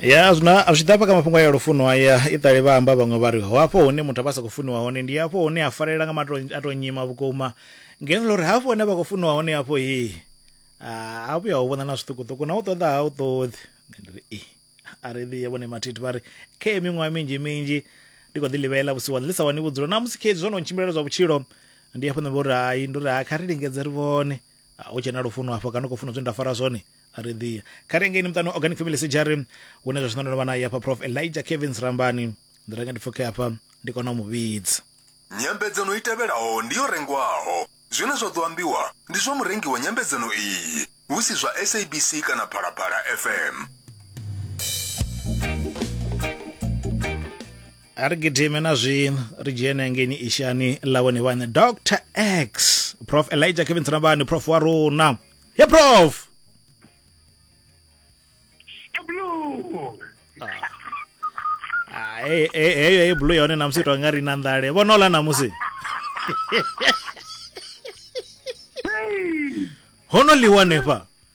ya zwino a zwi ḓa hafha kha mafhungo a ya lufuno aya i ṱali vha amba vhaṅwe vha ri ho hafho hune muthu a vha sa khou funiwa hone ndi hafho hune a farelela nga mato a tou nyima vhukuma ngeno ḽa uri hafho hune vha khou funiwa hone hafho hi a vhuya ho vhona na zwiṱukuṱuku na u ṱoḓa ha u ṱoḓi ndi ri i a ri ḓiye vhone mathithi vha ri khe miṅwaha minzhi minzhi ndi khou ḓi ḽivhela vhusiku wa ḽi sa wani vhudzulo na musi khedzi zwo no tshimbilela zwa vhutshilo ndi hafho nṋe vho ri hai ndo ri hai kha ri lingedze ri vhone ah, hu tshena lufuno hafho kana u khou funa zwine nda fara zwone a ri ḓiya kha ri ngeini muṱani organic family sejari hune zwa zwino ndo no vha naye hafha prof elijah kevins rambani ndi renge ndi pfuke hafha ndi kona u mu vhidza nyambedzano i tevhelaho ndi yo rengwaho zwine zwa ḓo ambiwa ndi zwa murengi wa nyambedzano iyi hu si zwa sabc kana phalaphala fm a ri gidime na zwino ri dzhene hangeni ishani ḽa vhone vhaṋe dr x prof elijah kevin tsinabani prof wa rona ye prof ah, eh, eh, heyo ye blue yone namusi to nga ri na nḓale vhona ola namusi hono ḽiwa nefha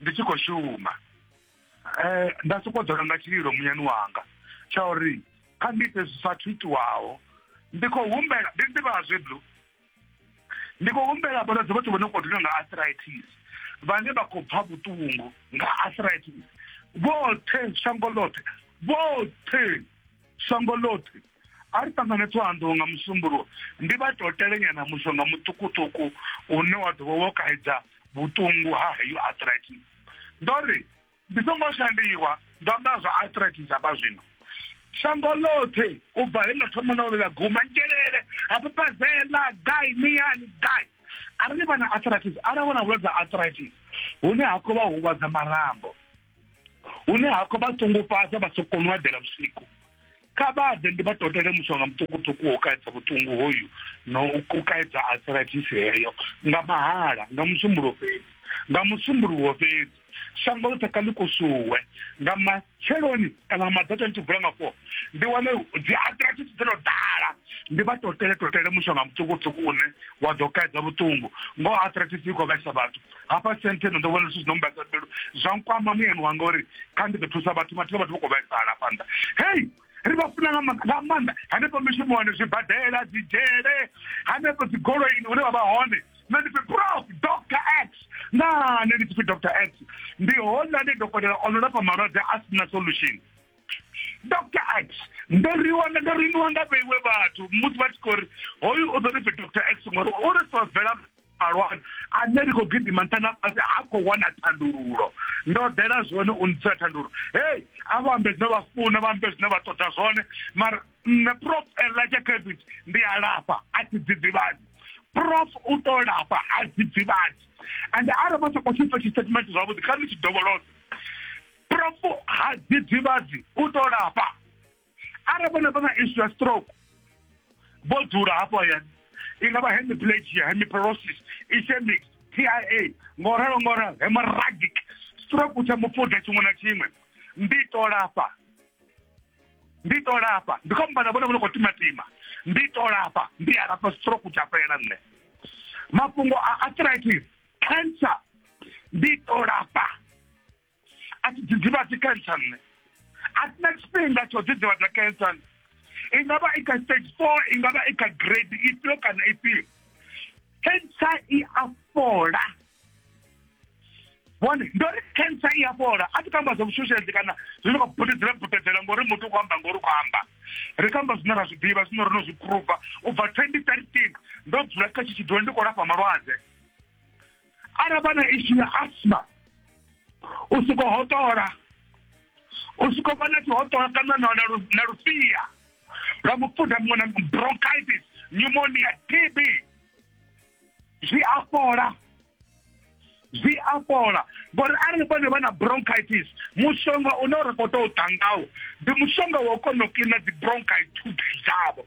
ndi tshi khou shuma um nda sokou dzula nga tshililo munyani wanga tsha uri kha ndi ite zwi sathu itiwaho ndi khou humbela ndi ḓivhaa zwe blue ndi khou humbela vhalwadze vhoṱhe vho no khou dina nga arthritis vhane vha khou pfa vhuṱungu nga arthritis vhoṱhe shango ḽoṱhe vhoṱhe shango ḽoṱhe a ri ṱangane ṱhohanḓou nga musumbuluwo ndi vha tou telenyana mushonga muṱukuṱuku une wa ḓo vha wo kaidza vhuṱungu ha heyo arthritis ndo ri ndi songo shandiwa ndo amba zwa arthritis hafha zwino shango ḽoṱhe u bva he ḽa thoma na ḽa guma ngelele hafho pazela gai miyani gai arali vha na arthritis arali vha na vhulwadze ha arthritis hune ha khou vha huvhadza marambo hune hafha vha songo fhasa vha so kona u eḓela vhusiku kha vha ḓe ndi vha totele mushonga muṱukuṱuku wo kaedza vhuṱungu hoyu no u kaedza arthritis heyo nga mahala nga musumbulo fhedzi nga musumbuluwo fhedzi shango ḽoṱhe kha ḽi kusuwe nga matsheloni kana nga maḓato ndi tshi vula nga four ndi wane dzi arthritis dzi no ḓala ndi vha totele totele mushonga muṱukuṱuku une wa ḓo kaedza vhuṱungu ngo arthritis i khou vhaisa vhathu hafha senteno ndo vhona zwithu zwino mbasa pelo zwa nkwama muyani wanga uri kha ndi ḓo thusa vhathu vhathu vhathu vha khou vhaisala hafha nda hei ri vha funa nga maanḓa hanefho mishumoni zwibadela dzi dzhele hanefho dzi goloini hune vha vha hone nṋe ndi pfi prof dr x na nṋe ndi tshipfi dr x ndi hone ndi dokotela ono lafha malwadze a sina solution dr x ndo riwa ndo riniwa nga vheiwe vhathu musi vha tshi khou ri hoyu u ḓo ri pfi dr x ngori u ri solvela malwadze ane ri khou gidima nṱha na fhasi ha khou wana thandululo ndo ḓela zwone u ntsira thandululo hei a vha ambe zwine vha funa vha ambe zwine vha ṱoḓa zwone mara nṋe prof elijah cabbage ndi a lafha a thi dzidzivhadzi prof u ḓo lafha a dzidzivhadzi and arali vha sa khou tshipfa tshitatimenti zwavhuḓi kha ni tshi dovholosa prof ha dzidzivhadzi u ḓo lafha arali vhone vha na isu ya stroke vho dzula hafho hayani i nga vha hemiplegia hemiperosis ischemic tia ngo ralo ngo ralo hemorrhagic stroke tsha mufuda tshiṅwe na tshiṅwe ndi to lafha ndi to lafha ndi khou mbana vhone vho no khou timatima ndi to lafha ndi a lafha stroke tsha fhela nṋe mafhungo a arthritis cancer ndi to lafha a thi dzidzivhadzi cancer nṋe a thina tshifhinga tsho dzidzivhadza cancer i nga vha i kha stage four i nga vha i kha grade ifhio kana ifhio cancer i a fhola bone ndo ri cancer i a fhola a thi kho amba zwa vhushushedzi kana zwi no khou butedzela butedzela ngori muthu u khou amba ngori u khou amba ri khou amba zwine ra zwi ḓivha zwine ro no zwi phuruva u bva twenty thirteen ndo dzula kha tshi tshi ḓiwa ndi khou lafha malwadze arali vha na ishu ya asma u soko hotola u soko vha na tshihotola kana na na lu- na lufhia lwa mufuda muṅwe na muṅwe, bronchitis pneumonia tb zwi a fhola zwi a fhola ngori arali vhone vha na bronchitis mushonga une ra khou tou ḓa ngawo ndi mushonga wa u kona u kiḽina dzi bronchitis dzavho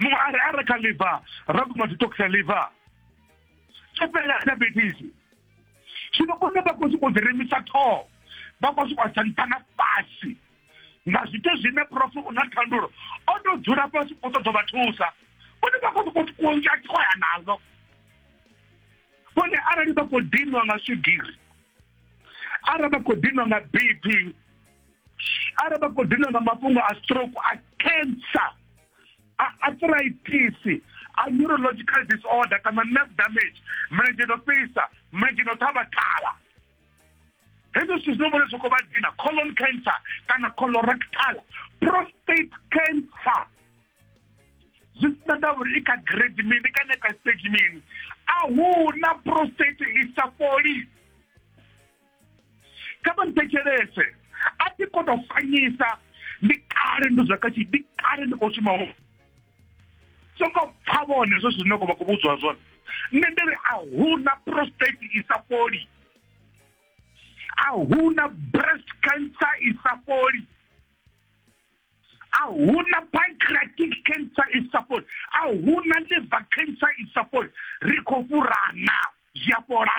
muṅwe a ri a re kha liver ra guma zwi tokisa liver tsho fhelela diabetes zwino kone vha khou sokou ḓi remisa ṱhoho vha khou sokou sa nṱha na fhasi nga zwithu zwine prof u na thandulo o tou dzula fhasi u ṱoḓo vha thusa vhone vha khou sokou kunzha ṱhoya nazo vhone arali vha khou dinwa nga swigiri arali vha khou dinwa nga bp arali vha khou dina nga mafhungo a stroke a cancer a arthritis a neurological disorder kana nerve damage mulenzhe no fhisa mulenzhe no ṱhavha ṱhavha hezwo zwithu zwino vhone zwo khou vha dina colon cancer kana colorectal prostate cancer zwi sina nda uri i kha grade mini kana kha stage mini a hu na prostate i sa fholi kha vha nthetshelese a thi kho to fanyisa ndi kale ndo zwa katshi ndi kale ndi khou shuma ho songo pfa vhone zwe zwine kho vha khou vhudzwa zwone nṋe ndi ri a huna prostate i sa fholi a huna breast cancer i sa fholi a huna pancreatic cancer i sa fholi a huna liver cancer i sa fholi ri khou fhurana zwi a fhola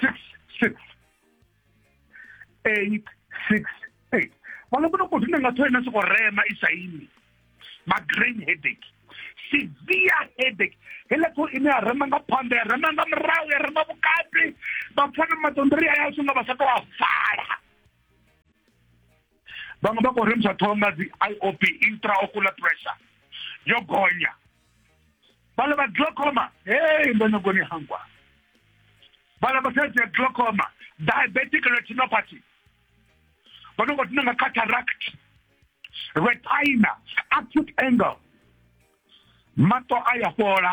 six six eight six eight vha nga vhona koti ndi nga thoyena soko rema i sa imi ma-grain headache severe headache heila ṱho ine ya rema nga phanḓa ya rema nga murahu ya rema vhukati vha pfa na maṱondori aya songa vha sa tou a vala vhaṅwe vha khou remisa ṱhoho nga dzi i o p intraocular pressure yo gonya vhala vha glaucoma hey ndo nyagoni hangwa vhala vha thaidzo ya glaucoma diabetic retinopathy vha no khou tina nga cataract retina acute angle maṱo a ya fhola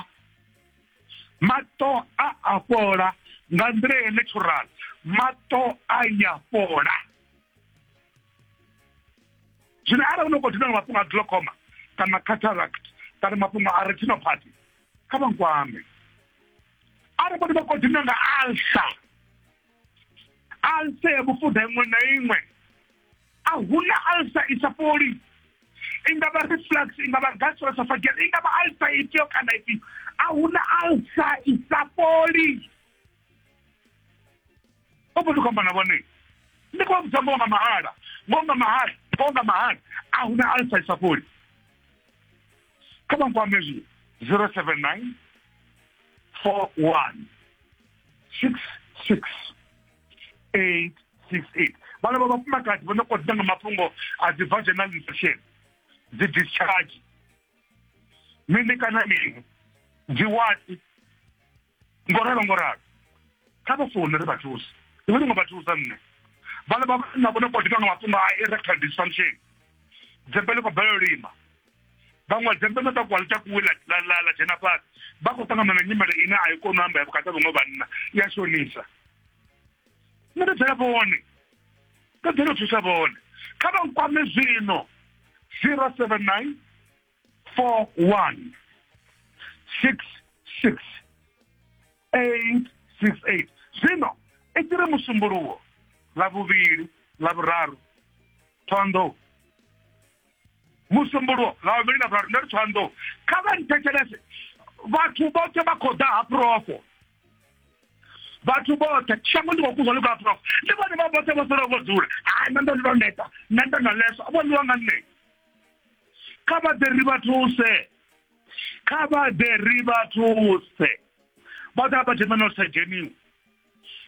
maṱo a a fhola nga nḓila ya natural maṱo a ya fhola zwino arali u no khou dina nga mafhungo a glaucoma kana cataract kana mafhungo a retinopathy kha vha nkwame arali vhone vha khou dina nga alsa alsa ya vhufuda iṅwe na iṅwe a huna alsa i sa fholi i nga vha reflux i nga vha gastroesophageal i nga vha alsa ifhio kana ifhio a huna alsa i sa fholi vha mbo ḓi khou amba na vhone ndi khou vha vhudza ngoho nga mahala ngoho nga mahala ngoho nga mahala a hu na alisa i sa fholi kha vha nkwame zwi zero seven nine four one six six eight six eight vhana vha vhafumakadzi vho no kho ḓa nga mafhungo a dzi vaginal infection dzi discharge mini kana mini dzi wati ngo ralo ngo ralo kha vha foune ri vha thusa iwe ndi ngo vha thusa nṋe vhana vha na vhone kotika nga mafhungo a erectile dysfunction dzembe ḽi khou bela lima vhaṅwe dzembe ḽo takuwa ḽi takuwe ḽa dzhena fhasi vha khou ṱangana na nyimele ine a i koni u amba ya vhukati ha vhaṅwe vhanna i a shonisa nṋe ndo dzela vhone ndo dzela u thusa vhone kha vha nkwame zwino zero seven nine four one six six eight six eight zwino i tshi ri musumbuluwo ḽa vhuvhili ḽa vhuraru thondo musumbuluwo ḽa vhuvhili ḽa vhuraru ndi ri thondo kha vha nthetshelese vhathu vhoṱhe vha khou ḓa ha profo vhathu vhoṱhe shango ndi khou kuzwa ḽi khou profo ndi vhone vha vhoṱhe vho sala vho dzula hai na ndo ndi ndo neta na ndo na leso vho ḽiwa nga nṋe kha vha ḓe ri vha thuse kha vha ḓe ri vha thuse vha ḓa vha dzhena na sa dzheniwa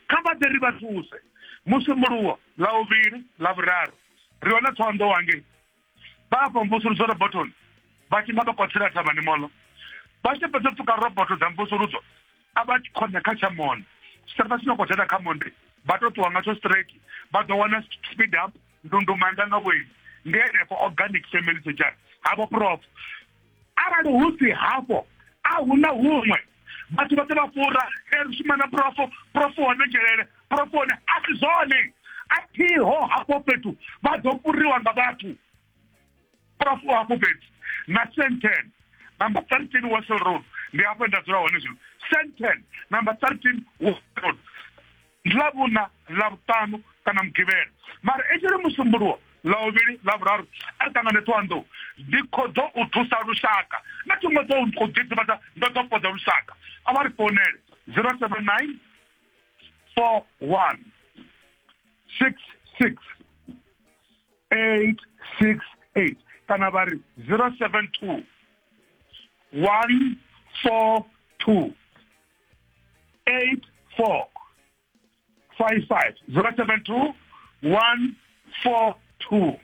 kha vha ḓe ri vha thuse musi muluwo ḽa vhuvhili ḽa vhuraru ri wana thondo wangei vha afha mvusuludzo robotoni vha tshima vha kwathela thavhani moḽo vha tshi fhedza pfuka roboto dza mvusuludzo a vha tshi khona kha tsha monde sa vha sina kwathela kha monde vha to ṱuwa nga tsho straight vha ḓo wana speed up ndundumanda nga vhoini ndi henefho organic family society havho prof arali hu si hafho a hu na huṅwe vhathu vhoṱhe vha fura e ri shuma na profo profo hone dzhelele profo hone a si zwone a thiho hafho fhethu vha ḓo furiwa nga vhathu profo hafho fhethu na senten number thirteen wasel road ndi hafho nda dzula hone zwino senten number thirteen wasel road ndi ḽa vhuṋa ḽa vhuṱanu kana mugivhela mara i tshi ri musumbuluwo ḽa vhuvhili ḽa vhuraru a ri ṱangane ṱhowanḓou ndi kho ḓo u thusa lushaka na thi ngo ḓo u ḓiḓivhadza ndo ḓo fhodza lushaka a vha ri founele zero seven nine four one six six eight six eight kana vha ri zero seven two one four two 84 55 072 142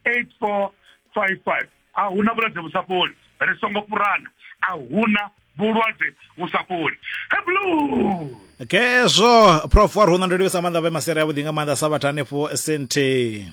8455 a huna vhulwadze vhu sa fholi ri songo fhurana a huna vhulwadze vhu sa fholi heblu khezwo prof wa runo ndi livhisa maanḓa vhe masere avhuḓi nga maanḓa sa vhathu hanefho senteni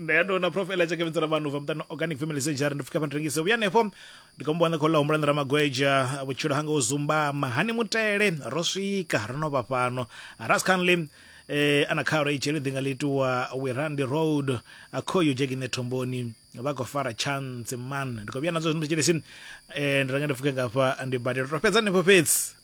nṋe ya tou na prof eletsha kevhedza na vanhu va muṱani organic family surgery ndi pfuka phantrengise vhuya hanefho ndi khombo wana khou ḽa humbula ndi ramagweja vhutshilo hanga u zumbama hani mutele ro swika ro no vha fhano ras canley eh ana kharo i tshele ḓinga ḽitiwa wirandi road a khoyo dzhekine thomboni vha khou fara chance man ndi khou vhuya nadzo zwino tshelesi eh ndi ranga ndi pfuke ngafha ndi badela to fhedza hanefho fhedzi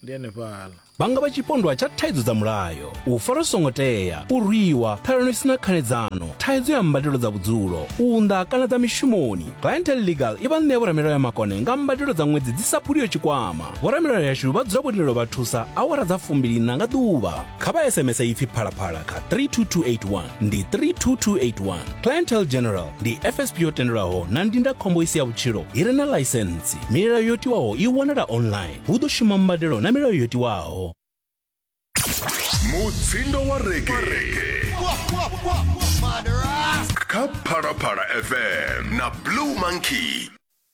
ndi henefhala vha nga vha tshipondwa tsha thaidzo dza mulayo u fara zwi songo tea u rwiwa ṱhalano i si na khanedzano thaidzo ya mbadelo dza vhudzulo u unḓa kana dza mishumoni clientel legal i vha ṋea vhoramilayo ya makone nga mbadelo dza ṅwedzi dzi sa phuliyo tshikwama vhoramilayo yashu vha dzula vho lindela vha thusa awara dza fumbiliina nga ḓuvha kha vha sms ipfi phalaphala kha 32281 ndi 32281 clientele general ndi fsp yo tendelwaho na ndindakhombo i si ya vhutshilo i re na ḽaisentsi milayo yo tiwaho i wanala online hu ḓo shuma mbadelo na milayo yo tiwaho mutsindo wa rege kha phalaphala fm na blue monkey